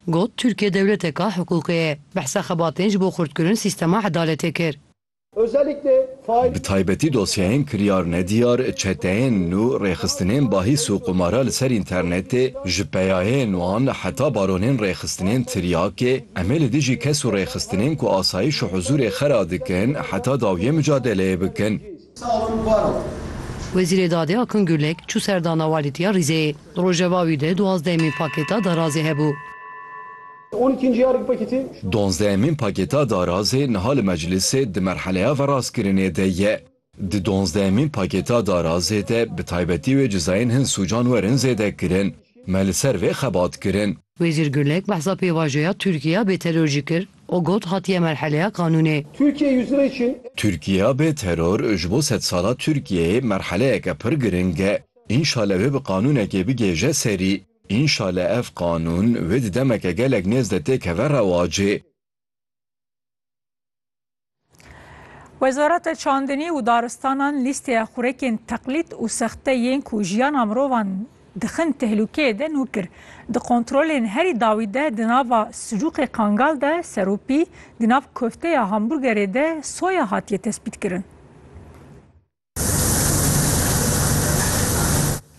Got, Tirkiye dewleteka hiqûqê ye. Behsa xebatên ji bo xurtkirin sîstema edaletê kir. Bi taybetî dosyayên kiryar nediyar, çeteyên nû, rêxistinên bahîs û qumara li ser înternetê, ji peyayên wan heta baronên rêxistinên tiryakê, em ê li dijî kes û rêxistinên ku asayîş û huzûrê xera dikin heta dawiyê micadeleyê bikin. Wezîrê Dadê Akın Gürlek çû ser dana walîtiya Rîzeyê. Di rojeva wî de duwazdehemîn pakêta darazê hebû. Duwazdehemîn pakêta darazê niha li meclîsê di merheleya verastkirinê de ye. Di duwazdehemîn pakêta darazê de bi taybetî wê cizayên hin sûcan werin zêdekirin. Me li ser vê xebat kirin. Wezîr Gulek behsa pêvajoya Tirkiya bê teror jî kir û got hatiye merheleya qanûnê. Türkiye yüzyılı için. Tirkiya bê teror ji bo sedsala Tirkiyeyê merheleyeke pir giring e. Înşale wê bi qanûnekê bigêje serî. Înşale ev qanûn wê di demeke gelek nêz de têkeve rewacê. Wezareta Çandinî û Daristanan lîsteya xurekên teqlîd û sexte yên ku jiyana mirovan dixin tehlûkeyê de nû kir. Di kontrolên herî dawî de di nava sicuqê Kangal de serûpî, di nav kofteya hamburgerê de soya hatiye tespîtkirin.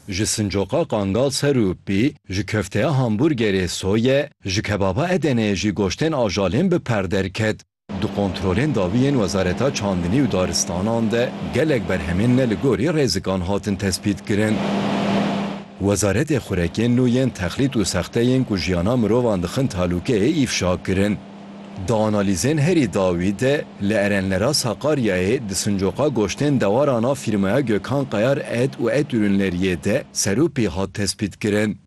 Ji sincoqa Kangal serûpî, ji kofteya hamburgerê soye, ji kebaba Edeneyê jî goştên ajalên bi per derket. Di kontrolên dawî yên Wezareta Çandinî û Daristanan de gelek berhemên ne li gorî rêzikan hatin tespîtkirin. Wezaretê Xurekên nû yên texlît û sexteyên ku jiyana mirovan dixin talûkeyê îfşa kirin. Di analîzên herî dawî de li Erenlera Sakaryayê di sincoqa goştên dewaran a fîrmaya Gökhan Kayar et û et ürünleriyê de serûpî hat tespîtkirin.